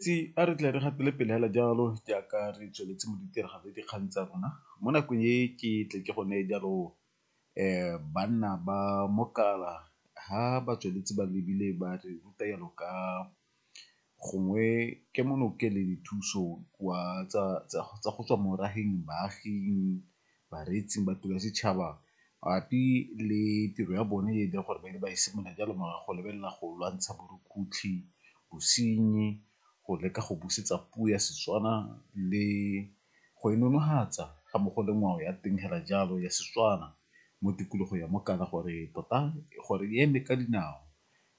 Tsi a re tle re gatele pele hela jalo jaaka re tsweletse mo ditiragalo le dikgang tsa rona mo nakong e ke tle ke go neye jalo banna ba mokala ha ba tsweletse ba lebile ba re ruta jalo ka gongwe kemonokele dithuso kwa tsa go tswa mo rageng baaging bareetsi ba tiro ya setšhaba mabapi le tiro ya bone e leng gore ba ne ba e simolola jalo morago go lebelela go lwantsha borukutlhi, bosenyi, go leka go busetsa puo ya Setswana le go e nonofatsa ga mmogo le ngwao ya teng hela jalo ya Setswana mo tikologong ya Mokana gore tota gore e eme ka dinao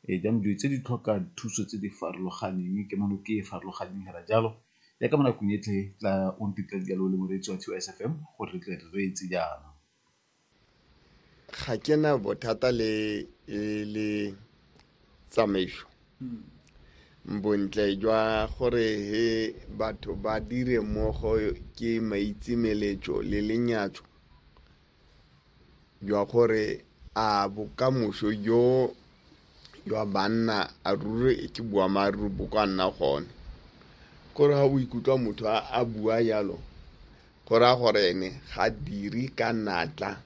Ee, jaanong dilo tse di tlhoka thuso tse di farologaneng ke mono ke e farologaneng hela jalo ya ka mo nakong e tle tla o ntetla dijalo o le moreetsi wa Tiwa SFM gore re tle re reetse jaana. Ga ke na bothata le le tsamaiso bontle jwa gore he batho ba dire mmogo ke maitsemeletso le lenyatso jwa gore a bokamoso jo jwa banna a ruri ke boammaaruri bo ka nna gone gore ga o ikutlwa motho a bua jalo go raya gore ene ga diri ka natla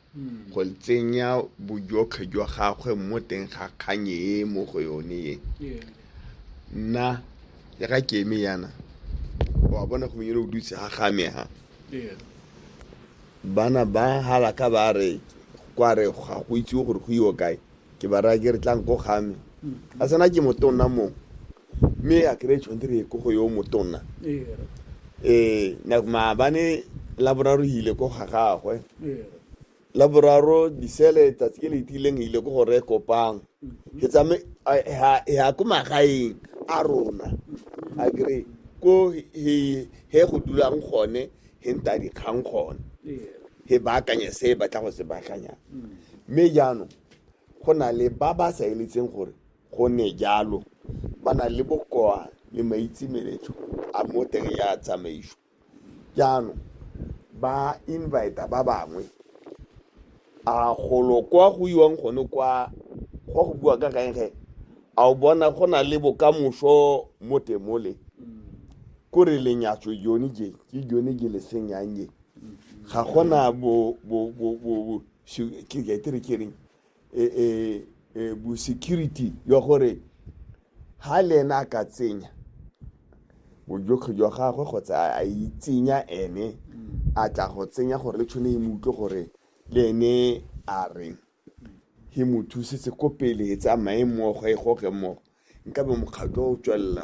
go tsenya bojotlhe jwa gagwe mo teng ga kganye e mo go yone e nna ya ka keme yana wa bona go menyele o dutse ga game ha Bana ba halaka ba re kwa re ga go itsiwe gore go iwe kae ke ba raya ke re tlang ko ga me a sena ke motonna mong mme a kry tshwanetse re ye ko go yo motonna um maabane laboraro ile ko ga gagwe laboraro disele tsatsi ke le itileng ile ko go re kopang ke tsame ya ko magaeng a rona a kry ko he go dulang gone he nta dikgang gone he baakanye se e batla go se baakanyang mme jaanong go na le ba ba sa eletseng gore go ne jalo ba na le bokoa le maitsemeletso a mo teng ya tsamaiso jaanong ba invita ba bangwe A golo kwa go iwang gone kwa go go bua ka gaenge a o bona go na le bokamoso mo temole ko re lenyatso jone je ke jone je le senyang je ga gona bo bo bo bo ke ke re ke reng eh eh eh, bo security jwa gore ha le ena a ka tsenya bojotlhe jwa gagwe kgotsa a itsenya ene a tla go tsenya gore le tshwane e mo utlwe gore le ene a reng he mo thusetse ko pele e tsamaye mmogo e goge mmogo nkabe mokgatlho o tswelela